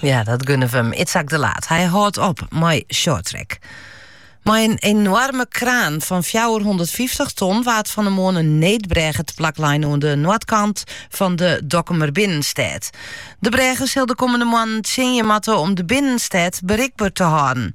Ja, dat gunne we hem. Itzhak de Laat. Hy hâldt op mei shorttrack. Mei in enoarme kraan fan fjouwerhûndertfyftich ton waard fan 'e moarn in needbrêge teplak lein oan de noardkant fan de Dokkumer binnenstêd. De brêge sil de kommende moannen tsjinje moatte om de binnenstêd berikber te hâlden.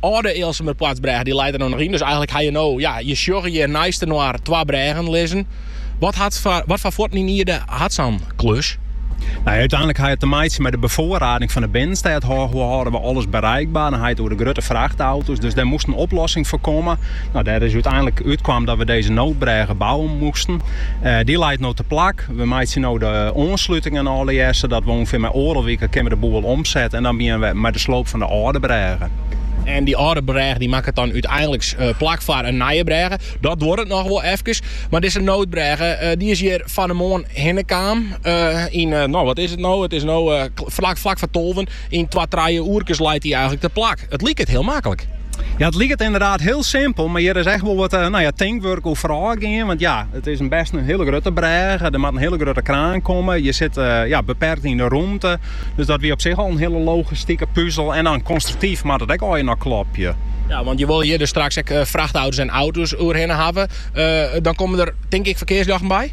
âlde Ealsumerpoartsbrêge dy leit der no noch yn. Dus eigenlik ha je no, ja, je sjogge hjir neistinoar twa brêgen lizzen. Wat hat foar, wat foar fuotten yn ierde hat sa'n klus? Nou, úteinlik ha je te meitsjen mei de befoarrading fan de binnenstêd. Hoe hâlde we alles bereikber? Dan ha je it oer de grutte frachtauto's. Dus dêr moast in oplossing foar komme. Nou, dêr is úteinlik útkaam dat we dizze noodbrêge bouwe moasten. Dy leit no teplak. We meitsje no de oanslutingen allegearre sadat we ûngefear mei oardel wike kinne we de boel omsette en dan begjinne we mei de sloop fan de âlde brêge. En dy âlde brêge dy makket dan úteinliks plak foar in nije brêge. Dat duorret noch wol efkes, mar dizze noodbrêge dy is hjir fan 'e moarn hinne kaam yn, no wat is it no, it is no flak foar tolven. Yn twa, trije oerkes leit dy eigenlik teplak. It liket hiel maklik. Ja, it liket ynderdaad hiel simpel, mar hjir is echt wol wat nou ja, tinkwurk oer foarôf gien. Want ja, it is in best in hiele grutte brêge. Der moat in hiele grutte kraan komme. Je sitte eh, ja, beperkt yn de romte. Dus dat wie op sich al in hiele logistike puzel. En dan konstruktyf moat dat ek allegear noch klopje. Ja, want je wolle hjir dus straks ek eh, frachtauto's en auto's oerhinne hawwe. Eh, dan komme der, tink ik, ferkearsljochten by?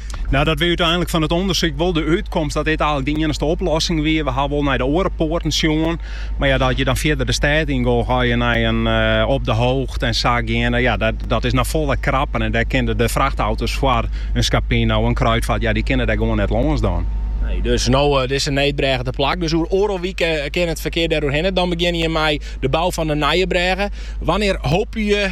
Nou, dat wie úteinlik fan it ûndersyk wol de útkomst dat dit eigenlik de iennichste oplossing wie. We ha wol nei de oare poarten sjoen, mar ja, dat je dan fierder de stêd yn gong, ga je nei in eh, op de hoogte en sa geane. Ja, dat, dat is noch folle krapper en dêr kinne de frachtauto's foar in Scapino, in Kruidvat, ja, dy kinne dêr gewoan net lâns dan. Nee, dus no, eh, dizze needbrêge teplak, dus oer oardel wike eh, kin it ferkear dêr oerhinne. Dan begjinne je mei de bou fan de nije brêge. Wannear hope je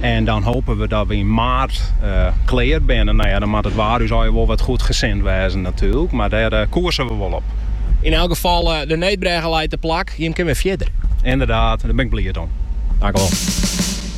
En dan hope we dat we yn maart klear binne. Nou ja, dan moat it waar ús allegear wol wat goedgesind wêze natuerlik, mar dêr koerse we wol op. Yn elk gefal, de needbrêge leit teplak, jim kin wer fierder. Ynderdaad, dêr bin ik bliid om. Tankewol.